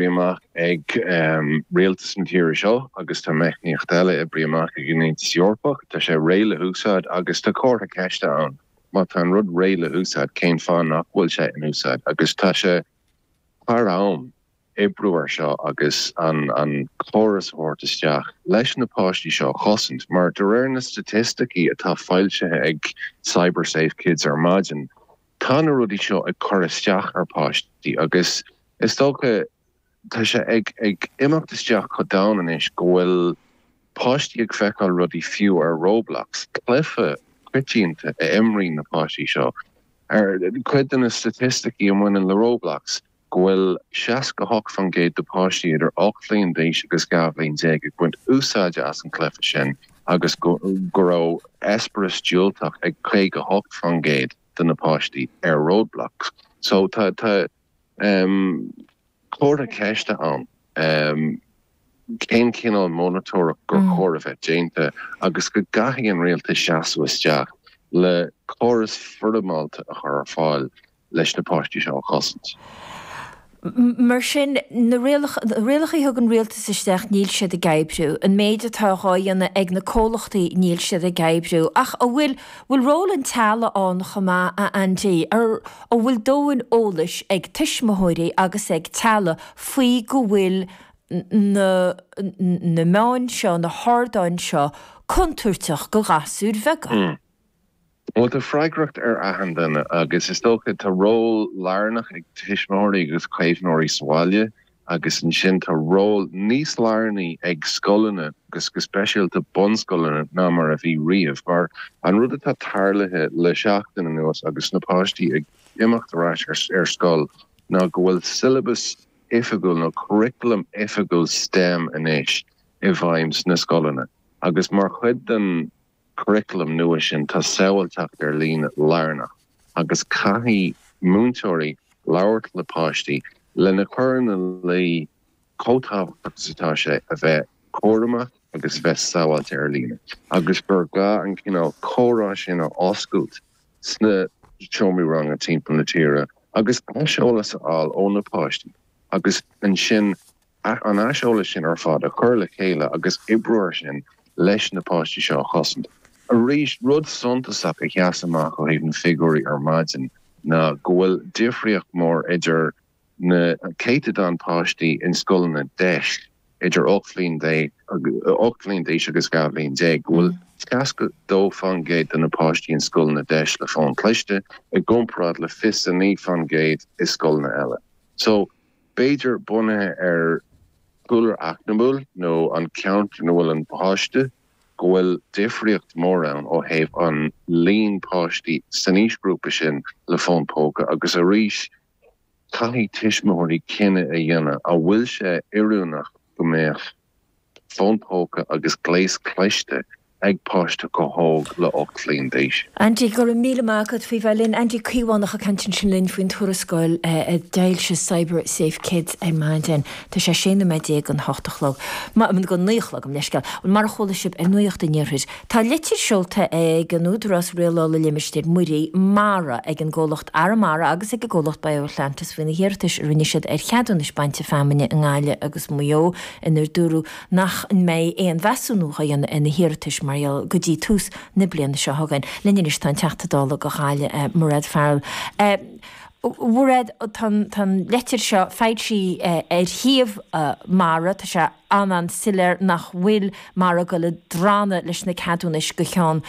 amach ag rialtas na tíre seo, agus tá meicníocht eile oibrithe amach ag an Aontas Eorpach, tá sé réidh le húsáid agus tá comhartha ceiste ann, má tá an rud réidh le húsáid cén fáth nach bhfuil sé in úsáid agus tá sé thar am oibriú ar seo agus an an córas a thabhairt isteach leis na páistí seo a chosaint mar de réir na staitisticí atá foilsithe ag Cyber Safe Kids ar maidin, Tá na rudaí seo ag cur isteach ar pháistí agus is dócha, tá sé ag imeacht isteach chomh domhain anois, go bhfuil páistí ag feiceáil rudaí fiú ar Roblox, cluiche coitianta a imríonn na páistí seo. Cuid de na staitisticí a bhaineann le Roblox, go bhfuil 68% de páistí idir 8 bhliain d'aois agus 12 bhliain ag baint úsáide as an cluiche sin agus go raibh eispéireas diúltach ag 58% de na páistí ar Roblox. So tá comhartha ceiste ann cén cineál monatóireacht gur chóir a bheith déanta agus go gcaithfidh an rialtas seasamh isteach le córas foirmeálta a chur ar fáil leis na páistí seo a chosaint. Mar sin, na rialacha a thug an rialtas isteach, níl siad ag oibriú. An méid atá dhá dhéanamh ag na comhlachtaí, níl siad ag oibriú. Ach an bhfuil, bhfuil ról an teaghlaigh ann chomh maith, a Aindí? Ar, an bhfuil dóthain eolais ag tuismitheoirí agus ag teaghlaigh faoi go bhfuil na, na meáin seo, na hardáin seo contúirteach do ghasúir bheaga? Bhuel, tá freagracht ar achan duine agus is dócha, tá ról lárnach ag tuismitheoirí agus caomhnóirí sa bhaile agus ansin tá ról níos lárnaí ag scoileanna agus go speisialta bunscoileanna ná mar a bhí riamh mar an rud atá tarlaithe le seachtain anuas agus na páistí ag imeacht ar ais ar scoil ná go bhfuil siollabas oifigiúil nó curriculum oifigiúil stem anois i bhfeidhm sna scoileanna agus mar chuid den churaclam nua sin tá sábháilteacht ar líne lárnach agus caithfidh múinteoirí labhairt le páistí lena chur ina luí chomh tábhachtach is atá sé a bheith cúramach agus a bheith sábháilte ar líne agus gur gá an cineál comhrá sin a oscailt sna seomraí ranga timpeall na tíre agus aiseolas a fháil ó na páistí agus ansin An aiseolas sin ar fad a chur le chéile agus oibriú air sin leis na páistí seo a chosaint. Rud suntasach a sheas amach ó thaobh na figiúirí ar maidin ná go bhfuil difríocht mhór idir na céatadáin páistí in scoileanna deis idir ocht bhliain déag, ocht bhliain d'aois agus dhá bhliain déag, go bhfuil seasca dó fán gcéad de na páistí in scoileanna deis le fón cliste i gcomparáid le fiche a naoi fán gcéad i scoileanna eile. So. b'fhéidir bunaithe ar chúlra eacnamúil nó an ceantar ina bhfuil an páiste, go bhfuil difríocht mhór ann ó thaobh an líon páistí san aoisghrúpa sin le fón póca agus arís caithfidh tuismitheoirí cinneadh a dhéanamh an bhfuil sé oiriúnach go mbeadh fón póca agus gléas cliste ag páiste chomh hóg le 8 mbliana d'aois. Andy, go raibh míle maith agat faoi bheith linn. Andy Caomhánach ag caint ansin linn faoin tuarascáil a d'fhoilsigh CyberSafeKids ar maidin. Tá sé 16 nóiméad chun a hocht a chlog. go naoi a chlog, gabh mo leithscéal. Mar a chuala sibh ar Nuacht an Iarthair, Tá litir seolta ag an Údarás Rialála Limistéir Muirí, MARA, ag an gcomhlacht Arramara agus ag an gcomhlacht BioAtlantis faoi na hiarratais a rinne siad ar cheadúnais bainte feamainne i nGaillimh agus Maigh Eo inar dúradh nach mbeidh aon mheasúnú á dhéanamh ar na hiarratais mar gheall go dtí tús na bliana seo chugainn. Linn anois tá an Teachta Dála do Ghaillimh, Mairéad Farrell. A Mhairéad, tá an litir seo foilsithe ar shuíomh MARA. Tá sé. an-soiléir nach bhfuil MARA ag gabháil ag drannadh leis na ceadúnais go ceann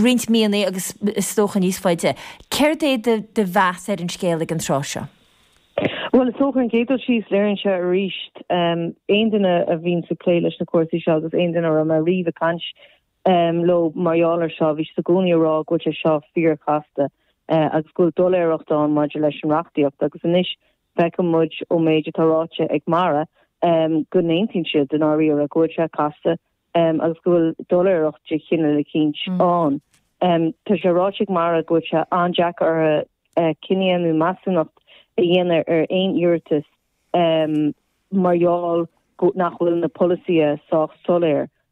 roinnt míonna agus is dócha níos faide. Céard é do mheas ar an scéal ag an tráth seo? Bhuel, is dócha, an chéad dul síos, léiríonn sé arís, aon duine a bhíonns ag plé leis na cúrsaí seo agus aon duine a raibh mé riamh ag caint leo mar gheall air seo, bhí siad i gcónaí ag rá go bhfuil sé seo fíorchasta agus go bhfuil doiléireacht ann maidir leis an reachtaíocht agus anois Feiceann muid ón méid atá ráite ag MARA go n-aontaíonn siad, i ndáiríre, go bhfuil sé casta agus go bhfuil doiléireacht de chineál eicínt ann. Tá sé ráite ag MARA go bhfuil sé an-deacair orthu cinneadh nó measúnacht a dhéanamh ar aon iarratas mar gheall nach bhfuil na polasaithe sách soiléir